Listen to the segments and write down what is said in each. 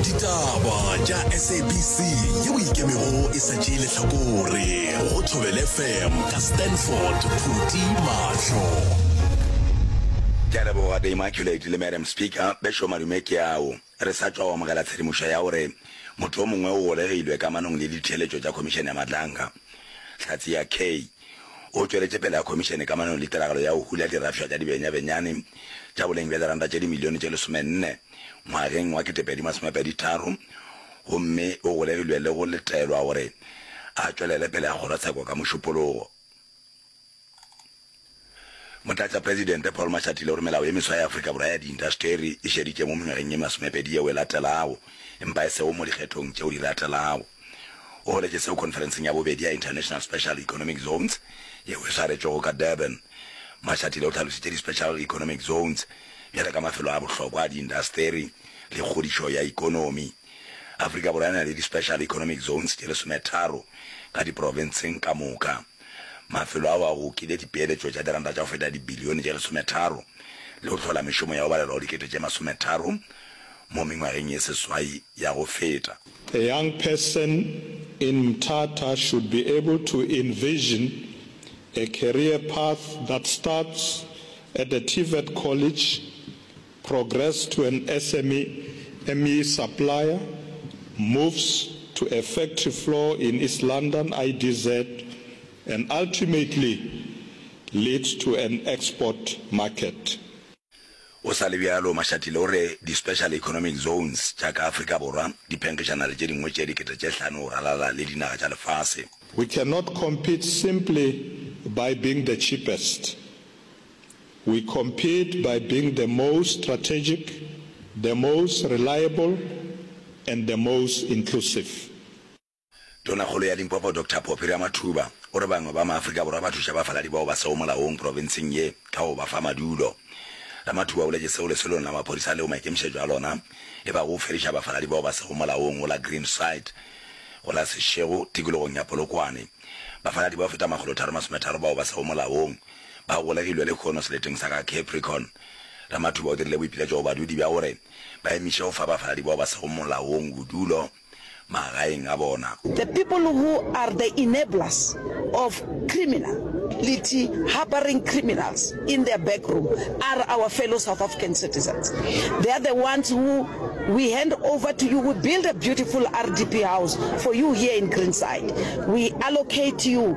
ditaba tša sabc yeo ikemego e sa tšee lehlakore go thobele fm ka stanford phuti mahlo ke a leboga the immaculate le madam speaker bešo madume ke ao re sa tšwa go amogela tshedimošo ya gore motho o mongwe o golegilwe kamanong le ditheeletšo tša khomišene ya matlanka hlatse ya k O tšweletše pele a Khomišene ka manano le tiragalo ya go hula dirafša tša dibenyabenyane tša boleng bja diranta tše dimilione tše lesomenne ngwageng wa ketepedi masome pedi tharo gomme o golegilwe le go letelwa gore a tšwelele pele a kgorotsheko ka mošupologo. Motlatšapresidente Paul Mashatile o re melao ye meswa ya Afrika Borwa ya diintaseteri e šeditše mo mengwageng ye masomepedi yeo e latelago, empa e sego mo dikgethong tšeo di latelago. O boletše seo khonferenseng ya bobedi ya International Special Economic Zones yeo e swaretšwego ka Durban. Mashatile o hlalošitše di-special economic zones bjale ka mafelo a bohlokwa a diintaseteri le kgodišo ya ekonomi. Afrika Borwa e na le di-special economic zones tše lesometharo ka diprofenseng ka moka. Mafelo ao a gokile dipeeletšo tša diranta tša go feta dibilione tše lesometharo le go hlola mešomo ya go balelwa go dikete tše masometharo mo mengwageng ye seswai ya go feta. A young person in Mthatha should be able to envision a career path that starts at the TVET College Progress to an SME, ME supplier, moves to a factory floor in East London, IDZ, and ultimately leads to an export market. Go sa le bjalo, Mashatile o re di-Special Economic Zones tša ka Afrika Borwa di phenkgišana le tše dingwe tše dikete tše hlano go ralala le dinaga tša lefase. We cannot compete simply by being the cheapest. We compete by being the most strategic, the most reliable and the most inclusive. Tonakgolo ya Limpopo Doctor Phophi Ramathuba o re bangwe ba maAfrika Borwa ba thuša bafaladi bao ba sego molaong profenseng ye ka go ba fa madulo. Ramathuba o boletše seo lesolong la maphodisa leo maikemišetšo a lona e bago go fediša bafaladi bao ba sego molaong go la Green Site go la Seshego tikologong ya Polokwane. Bafaladi bao feta makgolo tharo masometharo bao ba sego molaong ba golegilwe lehono seleteng sa ga Capricorn. Ramathuba o dirile boipiletšo go badudi bja gore ba emiše go fa bafaladi bao ba sego molaong bodulo magaeng a bona. The people who are the enablers of criminal lity harboring criminals in their back room are our fellow South African citizens. They are the ones who we hand over to you. We build a beautiful RDP house for you here in Greenside. We allocate you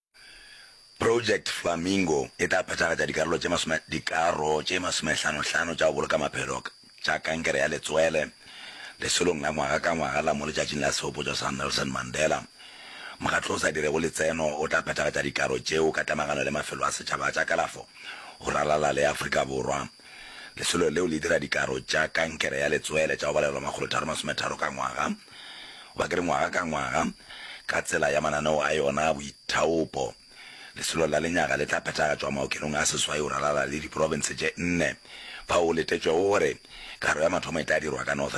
Project Flamingo e tla phethagatša dikarolo tše masome dikaro tše masomehlanohlano tša go boloka maphelo tša kankere ya letswele lesolong la ngwaga ka ngwaga la mo letšatšing la sehopotšo sa Nelson Mandela. Mokgatlo o sa dirego letseno o tla phethagatša dikaro tšeo ka tlamagano le mafelo a setšhaba tša kalafo go ralala le Afrika Borwa. Lesolo leo le dira dikaro tša kankere ya letswele tša go balelwa makgolotharo masometharo ka ngwaga. Goba ke re ngwaga ka ngwaga, ka tsela ya mananeo a yona a boithaopo, Lesolo la Lenyaga le tla phethagatšwa maokelong a seswai go ralala le diprofense tše nne, fao go letetšwego gore karo ya mathomo e tla dirwa ka Northern.